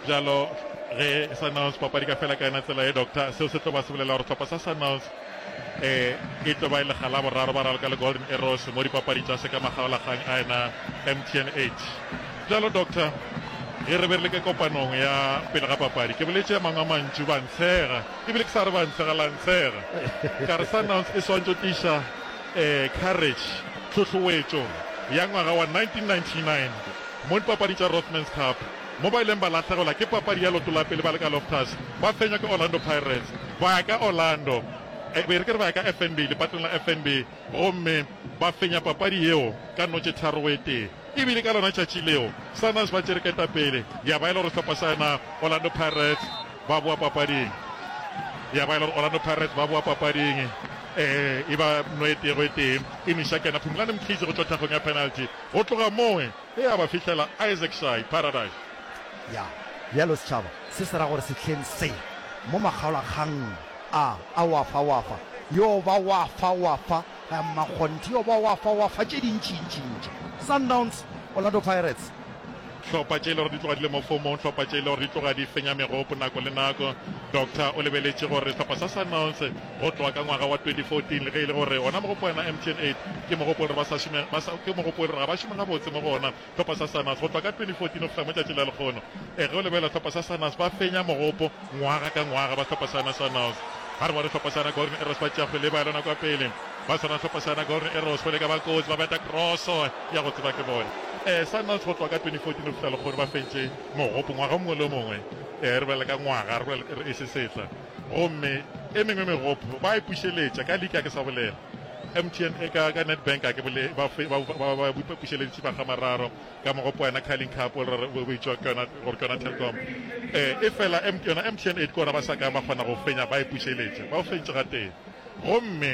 bjalo ge Sunhouse papadi ka fela ka yona tsela ye doctor seo se tlo ba se bolela gore tlhopha sa Sunhouse eh e tlo ba e lega la boraro ba raloka le Golden Arrows mo dipapadi tša se ka magaolagang a ena MTNH bjalo doctor ge re be re le ke kopanong ya pele ga papadi ke boletse mangwe a mantšu ba ntshega ebile ke sa re ba ntshega la ntshega ka re Sunhouse e swantšo tiša eh courage tlhotlhoetšo ya ngwaga wa 1999 Mo dipapadi tša Rothmans Cup mo ba ileng ba lahlegelwa ke papadi ya leoto la pele ba le ka Loftus ba fenywa ke Orlando Pirates, ba ya ka Orlando e be e re ke re ba ya ka FNB lepatong la FNB gomme ba fenya papadi yeo ka notše tharo go e tee. E bile ka lona tšatši leo Sundowns ba tšere ketapele ya ba e le gore sehlopha sa yona Orlando Pirates ba boa papading ya ba e le gore Orlando Pirates ba boa papading e ba no e tee go e tee e nwša kena Phumulani Mkhize go tšwa thakgong ya penalty. Go tloga moo e ya ba fihlela Isaacshae, Paradise. Ya, bjalo setšhaba se se ra gore sehleng se, mo makgaolakgang a a wa fa, wa fa, yo ba wa fa, wa fa, ga mmakgonthe yo ba wa fa, wa fa, tše dintšintšintši. Sundowns, Orlando Pirates. Hlopha tše e le gore di tloga di le mo fomong, hlopha tše e le gore di tloga di fenya megopo nako le nako. Doctor o lebeletše gore sehlopha sa Sundowns Go tloga ka ngwaga wa 2014, le ge e le gore ona mogopo wa yona MTN 8 ke mogopo o re ba sa šome, ba sa, ke mogopo o re ga ba šome gabotse mo go ona, hlopha sa Sanas go tloga ka 2014 go fihla mo tšatšing la lekgono. Ee, ge o lebelela hlopha sa Sanas ba fenya mogopo ngwaga ka ngwaga ba hlopha sa yona Sanas. Ga re bone hlopha sa yona Golden Arrows ba tšea kgwele e ba ya lona kwa pele. Ba swana hlopha sa yona Golden Arrows go leka ba kotsi, ba beta kroso ya go tseba ke bone. Ee, Sanas go tloga ka 2014 go fihla lekgono ba fentše mogopo ngwaga o mongwe le o mongwe. Ee, re bolela ka ngwaga, re bolela e se setla. Gomme e mengwe megopo ba e pušeletša ka lika ke sa bolela. MTN e ka ka Nedbank a ke bole ba fe ba ba ba bupa pušeleditše ba gamararo ka mogopo yena Carling Cup o re bo itšwa ke yona gore ke yona Telkom eh e fela M yona MTN e ke ona ba sa ka ba kgona go fenya ba e pušeletša ba o feditše ga teng gomme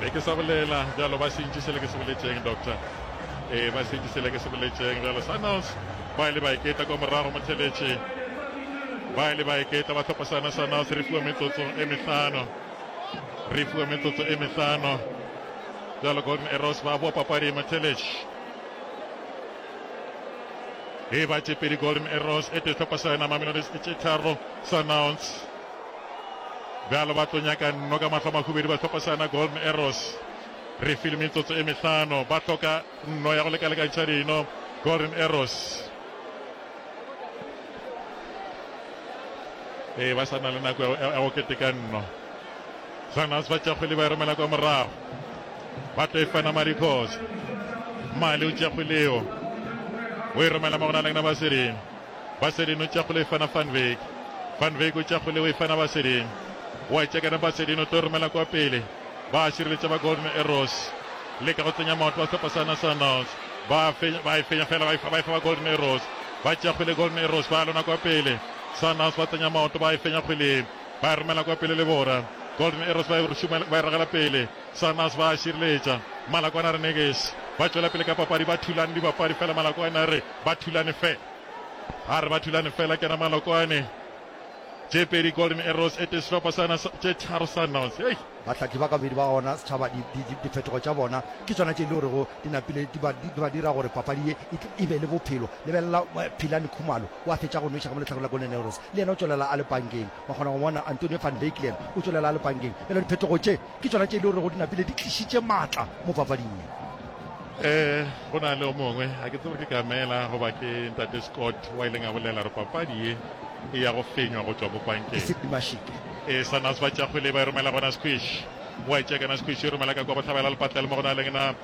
be ke sa bolela bjalo ba sentše sele ke se boletšeng doctor ee ba sentše sele ke se boletšeng bjalo sanals ba ile ba iketla kwa morago motheletše ba ile ba iketla ba tlhopa sana sanals re fiwa metsotso e mehlano re fiwa metsotso e mehlano bjalo golden arrows ba boa papadi motheletše e ba tšepedi golden arrows e tetlhopa sana mamelodi e tše tharo sanals bjalo ba tlo nyaka nno ka mahlo mahubedi ba hlopha sana golden arrows re file metsotso e mehlano ba hloka nno ya go lekalekantšha dino golden arrows ee ba sa na le nako ya go keteka nno sanas ba tšakgwele ba e romela kwa morago ba tlo e fana madikgosa male o tšakgweleo o e romela mo go na lengna ba sedimo Basedin o tšakgole o e fana Van Wyk. Van Wyk o tšakgole o e fana Basedin. O a tšekana Basedin o tlo romela kwa pele. Ba šireletša ba Golden Arrows. Leka go tsenya maoto wa sehlopha sa National Knights. Ba a fenya, ba e fenya fela, ba e fa, ba e fa ba Golden Arrows. Ba tšea kgwele Golden Arrows, ba lona kwa pele. Sun Knights ba tsenya maoto, ba e fenya kgwele ye. Ba e romela kwa pele le bona. Golden Arrows ba e šoma, ba e ragela pele. Sarnas ba a šireletša. Malakwana Renegades ba tšwela pele ka papadi ba thulane dibapadi fela Malakwane a re ba thulane fe a re ba thulane fela kena Malokwane tše pedi Golden Arrows e tee sehlopha sa na tše tharo Sundowns hei Bahlahli ba kabedi ba gona setšhaba di, di, di, difetogo tša bona ke tsona tše e le gorego di napile di ba, di, di ba dira gore papadi ye e, tl- e be le bophelo. Lebelela eh, Philani Khumalo o a fetša go nweša ka mo lehlakore la Golden Arrows, le yena o tšwelela a le pankeng. Wa kgona go bona Antonio van Wycklen o tšwelela a le pankeng. Bjale diphetogo tše Ke tšona tše e le rego di napile di tlišitše maatla mo papading ye. Ee, go na le o mongwe, ga ke tsebe ke Kamela goba ke Ntate Scott, wa ileng a bolela gore papadi ye e ya go fenywa go tšwa mo pankeng. Sid Mashik. Ee, Sannas ba tšea kgwele e ba e romela go Naskwish. Wa e tšea ka Naskwish, e romela ka kwa bohlabela lepatlela mo go na leng na.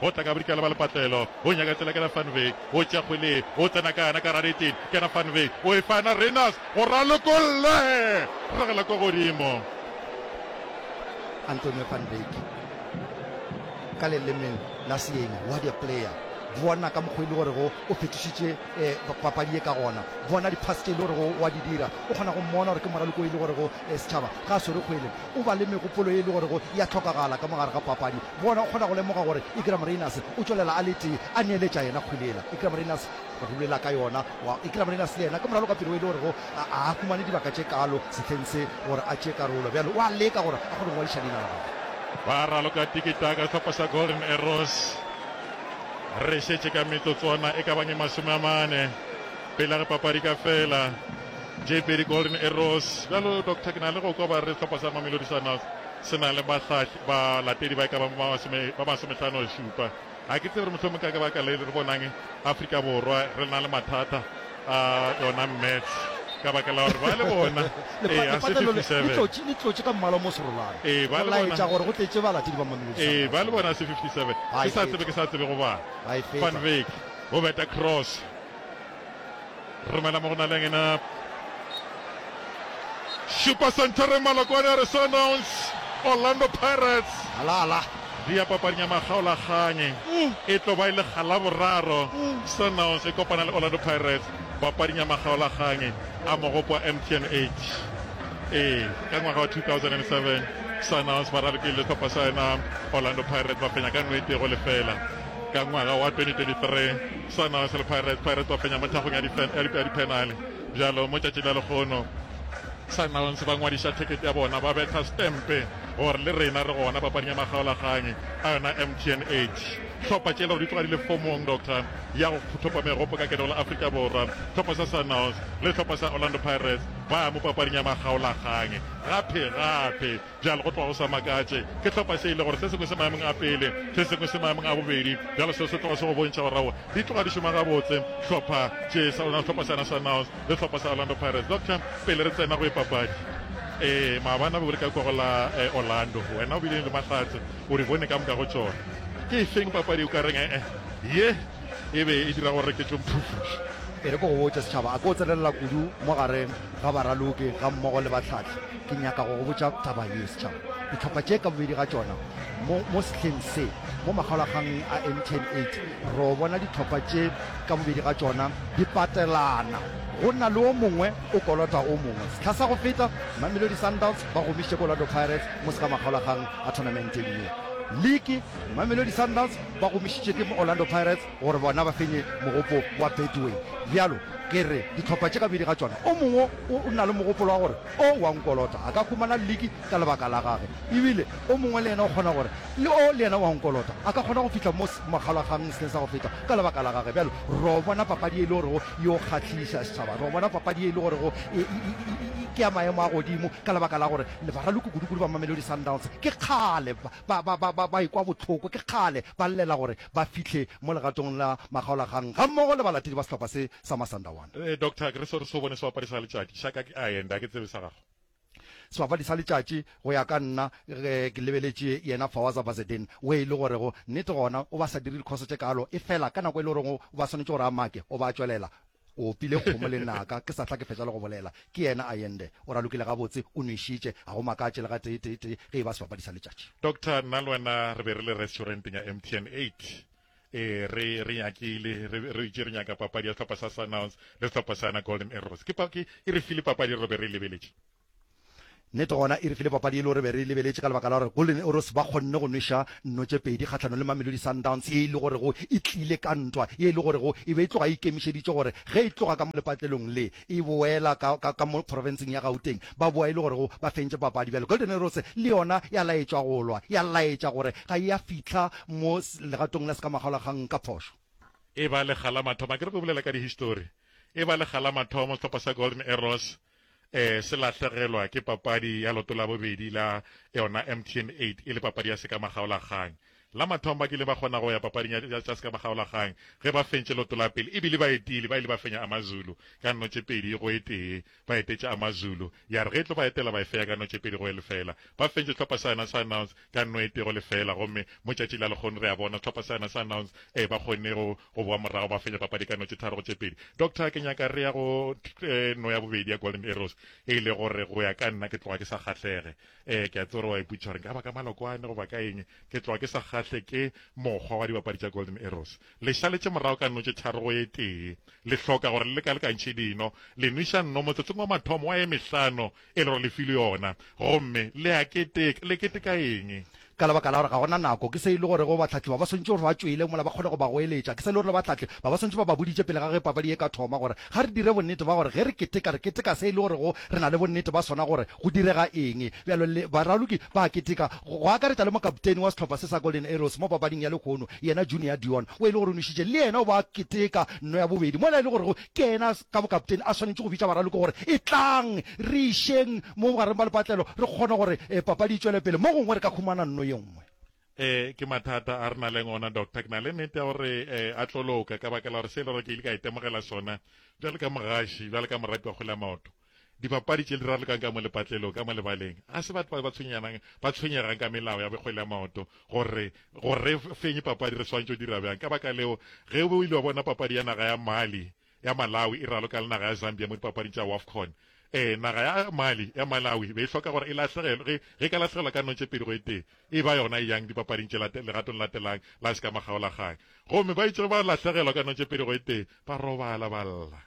Go tla ka bodikela ba lepatlelo, o nyaka tsela kena Van Wyk, o tšea kgwele, o tsena ka yona ka gare eteng, kena Van Wyk, o e fa na Rayners, go ralokolle! Ragela kwa godimo. Antonio Van Wyk, ka lelemeng la seeng, what a player! Bona ka mokgo e le gorego o fetošitše papadi ye ka gona, bona di pass tše e le gorego wa di dira, o kgona go mmona gore ke moraloko e le gorego setšhaba ga a swere kgwele, o ba le megopolo e le gorego ya hlokagala ka mo gare ga papadi. Bona, o kgona go lemoga gore Igramarinas o tšwelela a le tee a neeletša yena kgwele yela. Igramarinas o rulela ka yona. Wa, Igramarinas le yena ke moralo ka pelo e le gorego a, a a humane dibaka tše kaalo sehleng se gore a tšee karolo. Bjale o a leka gore a kgone go ngwadiša leina la gagwe. Ba raloka tiki-taka sehlopha sa Golden Arrows. Re šetše ka metsotswana e ka bang e masome a mane pele re papadi ka fela. Tše pedi Golden Arrows. Bjalo, Doctor, ke na le go kwa ba re sehlopha sa Mamelodi Sundowns se na le bahlahli. balatedi ba e ka bang ba masomehlanošupa. Ga ke tsebe gore mohlomong ka lebaka le re bonang Afrika Borwa re na le mathata a yona maths ka baka la gore ba le bona letlotše ka mmala mo serolane ee ba le bona se 57 ke sa tsebe ke sa tsebe go bana van vek go beta cross Romela mo go na le ngena. Šupa senthering Malokwane a re Sundowns, Orlando Pirates. Ala ala. Dia papading ya makgaolakganyi e tlo ba e le galaboraro Sundowns e kopana le Orlando Pirates papading ya makgaolakganyi a mogopo wa MTN 8. Ee, ka ngwaga wa 2007 Sundowns ba ralokile le sehlopha sa yona Orlando Pirates ba fenya ka no e tee go lefela ka ngwaga wa 2023. Swanaos le Pirates. Pirates ba fenya mo thakgong ya dipenale bjalo mo tšatši la lekgono. Sundowns ba ngwadiša thekete ya bona ba betha stempe gore le rena re gona papading ya makgaolakgang a yona MTN 8. Hlopha tše le gore di tloga di le fomong, Doctor, ya go thopa megopo ka ketego la Afrika Borwa. Hlopha sa Sundowns le hlopha sa Orlando Pirates ba ya mo papading ya makgaolakgang gape gape. Bjale, go tloga go sa makatše, ke hlopa se e le gore se sengwe se maemong a pele, se sengwe se maemong a bobedi. Bjale seo se tloga se go bontšha gore aowa, di tloga di šoma gabotse, hlopha tše sa lona, sehlopa sa Nationals le sehlopa sa Orlando Pirates. Doctor, pele re tsena go e papadi, ee, maabane be o le ka kwa go la eh, Orlando, wena o bile le mahlatse, o di bone ka moka go tšona. Ke e feng papadi o ka reng eh, ye e be e dira gore ke tlo mphufuša? E re ke go botše, Setšhaba, a ke o tsenelela kudu mo gareng ga baraloki ga mmogo le bahlahli. Ke nyaka go go botša taba ye, setšhaba. Dihlopha tše ka bobedi ga tšona, mo, mo sehleng se, mo makgaolakganweng a MTN 8, ro bona dihlopha tše ka bobedi ga tšona di patelana. Go na le o mongwe o kolota o mongwe. Sehla sa go feta, Mamelodi Sundowns ba gomišitše ko Orlando Pirates mo se ka makgaolakgang a thonamenten ye. Liki, Mamelodi Sundowns ba gomišitše ke mo Orlando Pirates gore bona ba fenye mogopo wa Betway. Bjalo, ke re, dihlopha tše ka bobedi ga tšona, o mongwe o, o na le mogopolo wa gore, O wa nkolota a ka humana liki ka lebaka la gage, ebile o mongwe le yena o kgona gore, le o le yena wa nkolota a ka kgona go fihla mo S, Mogala gang se sa go feta ka lebaka la gage. Bjalo ro bona papadi ye e le gorego e o kgahliša, setšhaba. Ro bona papadi ye e le gorego e, e, e, e, e, e, ke ya maemo a godimo, ka lebaka la gore le baraloko kudu-kudu ba Mamelodi Sundowns ke kgale ba, ba, ba, ba, ba, ba ekwa bohloko, ke kgale ba llela gore ba fihle mo legatong la makgaolagang gammogo le balatedi ba sehlopha se sa Masandawana. Eh, doctor ke re se re so bone sebapadi sa letšatši sa ka ke a enda ke tsebe sa gago sebapadi sa letšatši go ya ka nna ge ke lebeletše yena fawaza bazedin o e le gorego nnete gona o ba sa dire dikhoso tše kalo e fela ka nako e le goreng o ba swanetše gore a make o ba tšwelela o opile kgomo le naka ke sa tla ke fetša le go bolela ke yena a yende o ralokile gabotse o nwešitše ga go makatše le ga teeteetee ge e ba sebapadi sa letšatši doctor nna le wena re be re le restauranteng ya mtn eight ee re re nyakile re re itše re nyaka papadi ya sehlopha sa Sundowns le sehlopha sa yona Golden Arrows ke pa ke e re file papadi re be re lebeletše nnete gona e re file papadi e le gore be re lebeletše ka lebaka la gore Golden Arrows ba kgonne go nweša nno tše pedi kgahlano le Mamelodi Sundowns ye e le gorego e tlile ka ntwa ye e le gorego e be e tloga e ikemišeditše gore ge e tloga ka lepatlelong le e boela ka, ka, ka mo profenseng ya Gauteng, ba boa e le gorego ba fentše papadi. Bjale Golden Arrows le yona ya laetšwa go lwa, ya laetša gore ga e a fihla mo legatong la sekamagolakgang ka phošo. E ba lekga la mathomo, akere re bolela ka dihistori, e ba lekga la mathomo sehlopha sa Golden Arrows um se lahlegelwa ke papadi ya loto la bobedi la yona MTN eight e le papadi ya sekamagaolakgang. La mathomo ba kile ba kgona go ya papading ya, ya tša sekamagaolagang ge ba fentše loto la pele e bile baetili ba ile ba fenya Amazulu ka notšepedi go e tee. Ba etetše Amazulu ya re ge e tlo ba etela ba e feya ka notšepedi go e lefela. Ba fentše sehlopha sa yona sa Nouns ka no e tee go lefela gomme mo tšatši la lekgono re a bona sehlopha sa yona sa Nouns e ba kgonne go, go boa morago ba fenya papadi ka notše tharo go tše pedi. Doctor, ke nyaka re ya go eh, no ya bobedi ya Golden Arrows e ile gore go ya ka nna ke tloga ke sa kgahlege. ee ke a tse gore wa iputsa gore nka baka malokwane goba ka eng ke tloa ke sa kgahle ke mokgwa wa dibapadi tša golden arrows le šaletše morago ka notše tharo go e tee le hloka gore le lekalekantšhe dino le nwiša nno motsotsong wa mathomo wa e mehlano e le gore le file yona gomme le a keteka le keteka eng Ka lebaka la gore ga go na nako, ke se e le gorego bahlahli ba ba swantšwe gore ba tšwele mola ba kgone go ba goeletša. Ke se e le gore le bahlahli ba ba swantšwe ba ba boditše pele ga ge papadi ye e ka thoma gore ga re dire bonnete ba gore ge re keteka re keteka se e le gorego re na le bonnete ba sona gore go direga eng. Bjalo le baraloki ba a keteka, go akaretša le mokapteini wa sehlopha se sa Golden Arrows mo papading ya lehono, yena Junior Dion, o e le gore o nwešitše, le yena o be a keteka nno ya bobedi mola e le gorego Ke yena ka bokapteni a swanetše go bitša baraloko gore, Etlang, re išeng mo bogareng bja lepatlelo re kgone gore papadi e tšwele pele. Mo gongwe re ka humana nno ye nngwe. Ee, ke mathata a re na leng ona, Doctor. Ke na le nete ya gore a tlo loka, ka baka la gore se e le gore ke ile ka itemogela sona bjalo ka mogaši, bjalo ka moratiwa kgole ya maoto. Dipapadi tše di rarolokang ka mo lepatlelong, ka mo lebaleng, ga se batho ba ba tshwenyanang ba tshwenyegang ka melao ya bokgwele ya maoto gore gore re fenye papadi re swantšo dira bjang. Ka baka leo, ge o ile wa bona papadi ya naga ya Mali ya Malawi e raloka le naga ya Zambia mo dipapading tša Wafcon, ee, naga ya Mali ya Malawi be e hloka gore e lahlegelwe ge ge e ka lahlegelwa ka notše pedi go e tee e ba yona e yang dipapading tše late legatong latelang la sekamagaolagang. Gomme ba itše ge ba lahlegelwa ka notše pedi go e tee ba robala ba lla.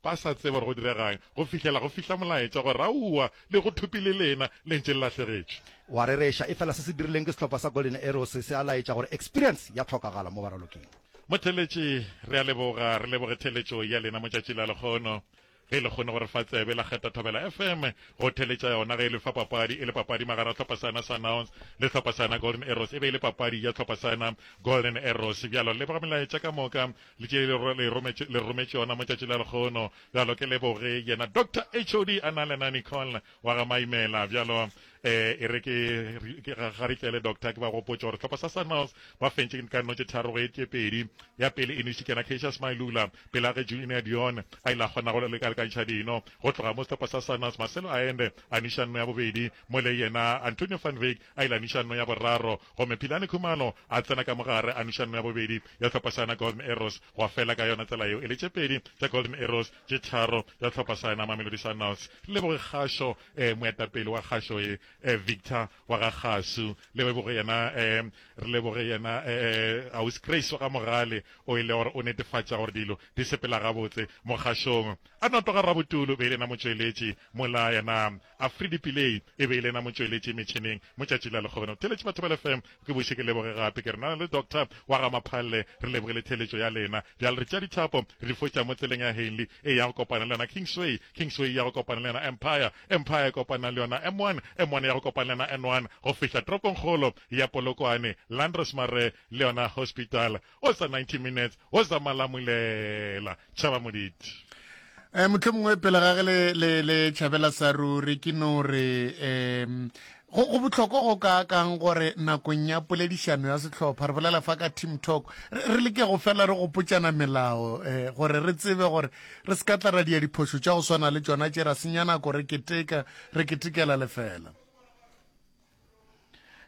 ba sa tsebe gore go diregang, go fihlela go fihla molaetša gore, Aowa, le go thupi le lena le ntše le lahlegetše. O a rereša, efela se se dirileng ke sehlopha sa Golden Arrows se a laetša gore Experience ya hlokagala mo baraloking. Motheeletši, re a leboga, re leboge theeletšo ya lena motšatši la lekgono. Ge le kgone go re fa tsebe, la kgetha Thobela FM go theeletša yona ge e le fa papadi e le papadi magara hlopha sana Sundowns le hlopha sana Golden Arrows e be e le papadi ya hlopha sana Golden Arrows. Bjalo leboga melaetša ka moka le tše le re le rometše le rometše yona mo tšatši la lekgono bjalo ke leboge yena doctor HOD a na le na Nicole wa ga Maimela bjalo eh e re ke ga re tlele doctor ke ba gopotša gore tlhopha sa Sunrise ba fentše ka notše tharo go etse pedi ya pele e nešitše na Keisha Smailula pela ge Junior Dion a ile a kgona go le ka lekantšha dino go tloga mo tlhopha sa Sunrise Marcelo Aende a niša nno ya bobedi mo le yena Antonio van Wyk a ile a nuša nno ya boraro, gomme Philani Khumalo a tsena ka mo gare a nuša nno ya bobedi ya hlopha saena Golden Arrows, gwa fela ka yona tsela yeo e le tše pedi tša Golden Arrows tše tharo tša hlopha saena Mamelodi Sundowns. Leboge Kgašo, um moetapele wa Kgašo ye, um Victor wa ga Kgasu, le leboge yena, um re leboge yena, um Ausi Grace wa ga Mogale o e le gore o netefatša gore dilo di sepela gabotse mo Kgašong. A no tloga Rabutulu be e le yena motšweletši mola yena Afridi Pillay e be e le yena motšweletši metšhineng mo tšatši la lekgono. Theeletše batho ba lefm, ke boše ke leboge gape ke re na le Doctor wa ga Maphalle re leboge le theeletšo ya lena. Bjale re tšea dithapo re di foša mo tseleng ya Henley e ya go kopana le yona Kingsway, Kingsway e ya go kopana le yona Empire, Empire e kopana le yona M1, M1 e ya go kopana le yona N1 go fihla toropongkgolo ya Polokwane, Landros Mare le yona Hospital. O sa 90 minutes o sa malamulela tšhaba moditi. Eh, mohlomongwe pele ga ge le, le, le tšhabela sa ruri ke no re um go, go bohlokwa go ka kang gore nakong ya poledišano ya sehlopha re bolela fa ka team talk re, re leke go fela re gopotšana melao eh, gore re tsebe gore re se ka tla ra dia diphošo tša go swana le tšona tše ra senya nako re keteka re ketekela lefela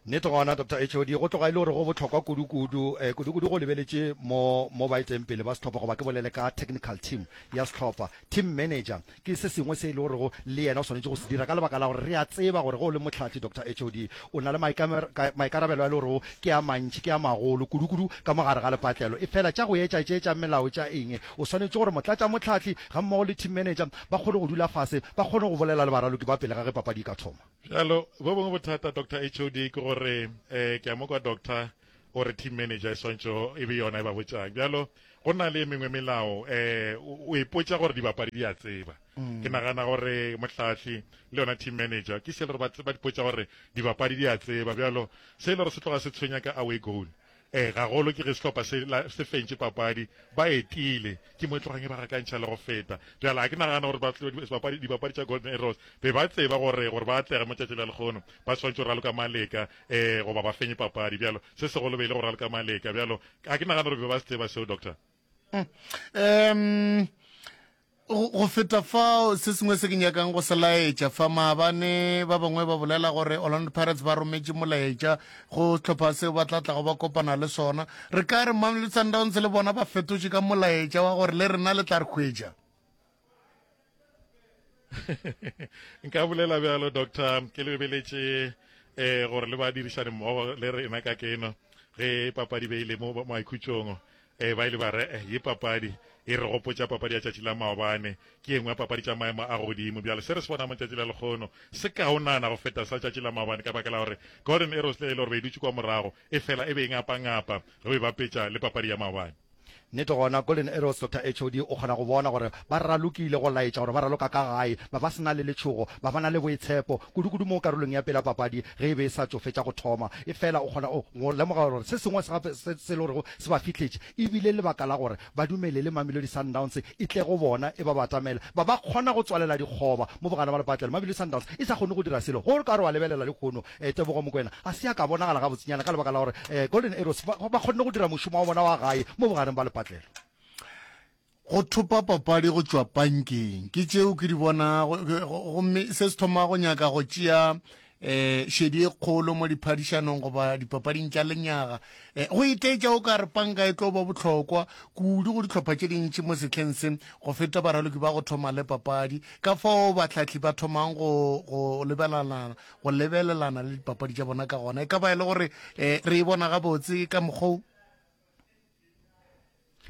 Nnete gona, Doctor HOD, go tloga e le gore go bohlokwa kudu-kudu, eh, kudu-kudu go lebeletše mo, mo ba etšeng pele ba sehlopha, goba ke bolele ka technical team ya sehlopha, team manager, ke se sengwe se e le gorego le yena o swanetše go se dira, ka lebaka la gore re a tseba gore ge o le mohlahli, Doctor HOD, o na le maikamer-, maikarabelo a e le gorego ke a mantši, ke a magolo kudu-kudu ka mo gare ga lepatlelo. Efela tša go etša tše tša melao tša eng, o swanetše gore motlatšamohlahli gammogo le team manager ba kgone go dula fase, ba kgone go bolela le baraloki ba pele ga ge papadi e ka thoma. Bjalo, bo bongwe bothata, Doctor HOD, ke gore eh, ke a mo kwa doctor o re team manager e swantšo e be yona e ba botšang bjalo go na le e mengwe melao um o ipotša gore dibapadi di a tseba mm. ke nagana gore mohlahli le yona team manager ke se le gore ba dipotša gore dibapadi di a tseba bjalo se e le gore se tloga se tshwenya ka away goal Ee, gagolo ke ge sehlopha se la se fentše papadi, ba etile. Ke mo e tlogang e ba gakantšha le go feta. Bjale ga ke nagana gore baflodi sebapadi dibapadi tša Golden Arrows be ba tseba gore gore ba atlege mo tšatši la lekgono ba swantše go raloka maleka ee goba ba fenye papadi bjalo. Se segolo be e le go raloka maleka bjalo. Ga ke nagana gore be ba se tseba seo, Doctor. Uhm. Go feta fao, se sengwe se ke nyakang go se laetša fa, maabane ba bangwe ba bolela gore Orlando Pirates ba rometše molaetša go sehlopha seo ba tla tlago ba kopana le sona. Re ka re Mamelodi Sundowns le bona ba fetotše ka molaetša wa gore le rena le tla re hwetša. Nka bolela bjalo, Doctor. Ke lebeletše um gore le ba dirišane mmogo le rena ka keno ge papadi beile mo maikhutšong. Ee, ba ile ba re, Eh, ye papadi e re gopotša papadi ya tšatši la maobane. Ke e nngwe ya papadi tša maemo a godimo. Bjale, se re se bonago matšatši le a lekgono se kaonana go feta sa tšatši la maobane ka baka la gore Golden Arrows le ge e le gore be e dutše kua morago, efela e be e ngapangapa ge o e bapetša le papadi ya maobane. Nnete gona, Golden Arrows, Doctor HOD o kgona go bona gore ba ralokile go laetša gore ba raloka ka gae, ba ba se na le letšhogo, ba ba na le boitshepo, kudu-kudu mo karolong ya pele ya papadi ge e be e sa tšo fetša go thoma. Efela o kgona go lemoga gore se sengwe gape se e le gorego se ba fihletše e bile lebaka la gore ba dumelele Mamelodi Sundowns e tle go bona e ba batamele ba ba kgona go tswalela dikgoba mo bogare ba lepatlelo. Mamelodi Sundowns e sa kgone go dira selo go ka re wa lebelela lehono Tebogo Mokoena ga se ya ka bonagala gabotsinyana ka lebaka la gore Golden Arrows ba kgonne go dira mošomo wa bona wa gae mo bogareng ba lepatlelo. Go thopa papadi go tšwa pankeng ke tšeo ke di bonago, gomme se se thoma go nyaka go tšea eh šedi e kgolo mo diphadišanong goba dipapading tša lenyaga eh, go itaetša o ka re panka e tlo ba bohlokwa kudu go dihlopha tše dintši mo sehleng se go feta baraloki ba go thoma le papadi ka fao bahlahli ba thomang go go lebelelana go lebelelana le dipapadi tša bona ka gona e ka ba e le gore eh, re e bona gabotse ka mokgwa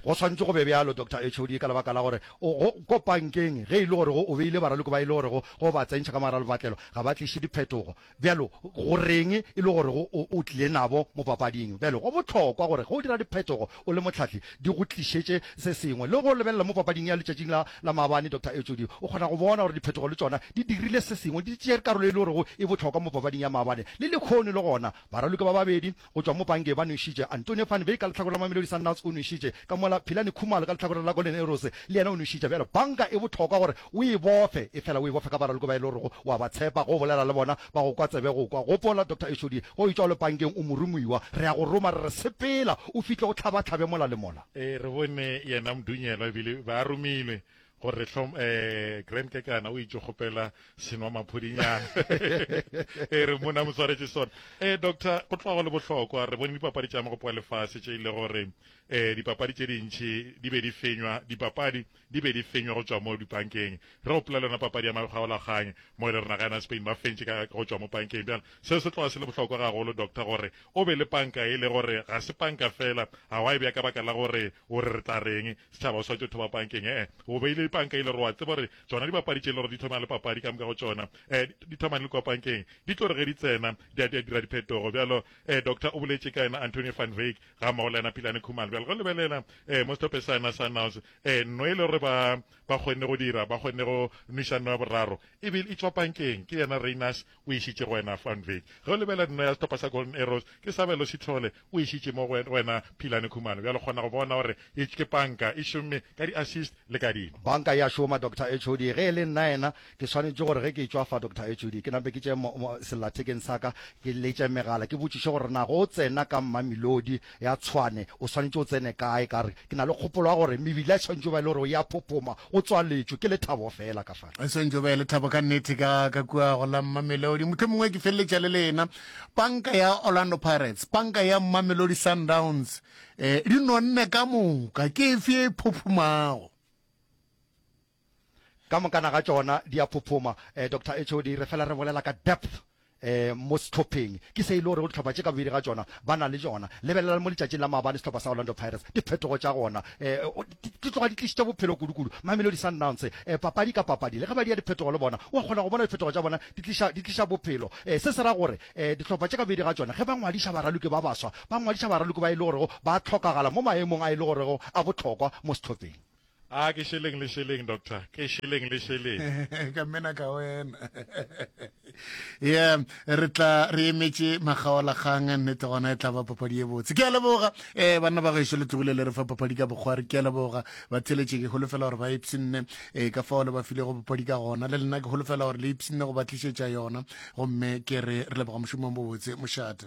Go swantše go be bjalo, Doctor HOD, ka lebaka la gore o go kopankeng ge e le gore go o beile baraloko ba e le gorego go ba tsentšha ka mogara lebatlelo ga ba tliše diphetogo. Bjalo go reng e le gore go o o tlile nabo mo papading? Bjalo go bohlokwa gore ge o dira diphetogo o le mohlahli di go tlišetše se sengwe. Le go lebelela mo papading ya letšatšing la la maabane, Doctor HOD, o kgona go bona gore diphetogo le tšona di dirile se sengwe, di tšere karolo e le gorego e bohlokwa mo papading ya maabane. Le lehono e le gona baraloko ba babedi Go tšwa mo Bange ba nwešitše Antonie van Wyk ka lehlakore la Mamelodi Sundowns o nwešitše, ka mola Philani Khumalo ka lehlakoreng la Golden Arrows le yena o nwešitše. Bjale Bange e bohlokwa gore o e bofe, efela o e bofe ka baraloko ba e le gorego o a ba tshepa, go bolela le bona, ba go kwa tsebe go kwa. Gopola, Doctor Eshodi, ge o etšwa o le Bangeng o moromuiwa, re a go roma re re sepela o fihle o hlabahlabe mola le mola. Ee, re bone yena Mdunyelwa ebile ba romilwe gore re hlom eh grand kekana o itse kgopela senwa maphodinyana e re mona mo tshwaretse sona eh doctor go tloga go le bohlokwa re bone dipapadi tša magopo a lefase tše ile gore eh dipapadi tše dintšhi di be di fenywa dipapadi di be di fenywa go tswa mo dipankeng re gopola le yona papadi ya magolaganye mo e le rena ga ena spain ba fentše ka go tswa mo pankeng bjana seo se tloga se le bohlokwa gagolo doctor gore O be le panka e le gore ga se panka feela, ga wa e bea ka baka la gore o re re tla reng, setšhaba o swanetše o thoma pankeng, ee, o beile dipanka e le gore wa tseba gore tšona dibapadi tše e le gore di thoma le papadi ka moka go tšona, ee, di thoma le kua pankeng, di tlo re ge di tsena di a, di a dira diphetogo. Bjalo, ee, Doctor o boletše ka yena Antonio van Wyk gammogo le yena Philane Khumalo. Bjale go lebelela, ee, mo setope sana sa Naus, ee, nno e le gore ba, ba kgonne go dira, ba kgonne go nwiša nno ya boraro, e be e tšwa pankeng, ke yena Rayners o išitše go wena Fun Vic. Ge o lebelela dino ya sehlopha sa Golden Arrows, ke Sabelo Sithole o išitše mo go wena Philane Khumalo. Bjale o kgona go bona gore ye ke panka e šomme ka di-assist le ka dino. Panka e a šoma, Doctor HOD. Ge e le nnaena, ke swanetše gore ge ke tšwa fa, Doctor HOD, ke nape ke tšee sellathekeng sa ka ke letše megala ke botšiše gore na go tsena ka Mmamilodi Ya tshwane, o swanetše o tsene kae ka re, ke na le kgopolo ya gore mebila e swanetše go ba e le gore e a phophoma, go tswaletšwe, ke lethabo feela ka fale. E swanetše go ba e lethabo ka nnete, ka, ka kua go la Mmamelodi. Mohlomongwe ke feleletša le lena. Panka ya Orlando Pirates, panka ya Mmamelodi Sundowns, eh, di nonne ka moka. Ke efe e phophomago? Ka mokana ga tšona di a phophoma. Eh, Doctor HOD, re fela re bolela ka depth eh, mo sehlopheng. Ke se e le gore go dihlopha tše ka bobedi ga tšona ba na le tšona. Lebelelang mo letšatšing la maabane sehlopha sa Orlando Pirates, diphetogo tša gona eh, o, di, di tloga di tlišitše bophelo kudu-kudu. Mamelodi Sundowns, eh, papadi ka papadi, le ge ba dia diphetogo le bona, o a kgona go bona diphetogo tša bona di tliša, di tliša bophelo. Eh, se se ra gore eh, dihlopha tše ka bobedi ga tšona ge ba ngwadiša baraloki ba baswa, ba ngwadiša baraloki ba e le gorego ba hlokagala mo maemong a e le gorego a bohlokwa mo sehlopheng. Ah, ke šeleng le šeleng, doctor. Ke šeleng le šeleng. ka mena ka wena. yeah, re tla re emetše makgaolakgang nnete gona e tla ba papadi e botse. Ke a leboga eh banna ba gaešo le tlogile le re fa papadi ka bokgwari. Ke a leboga ba theletše ke holofela gore ba ipsinne eh ka fao le ba file go papadi ka gona. Le lena ke holofela gore le ipsinne go ba tlišetša yona. Gomme ke re re leboga mošomong bobotse mošate.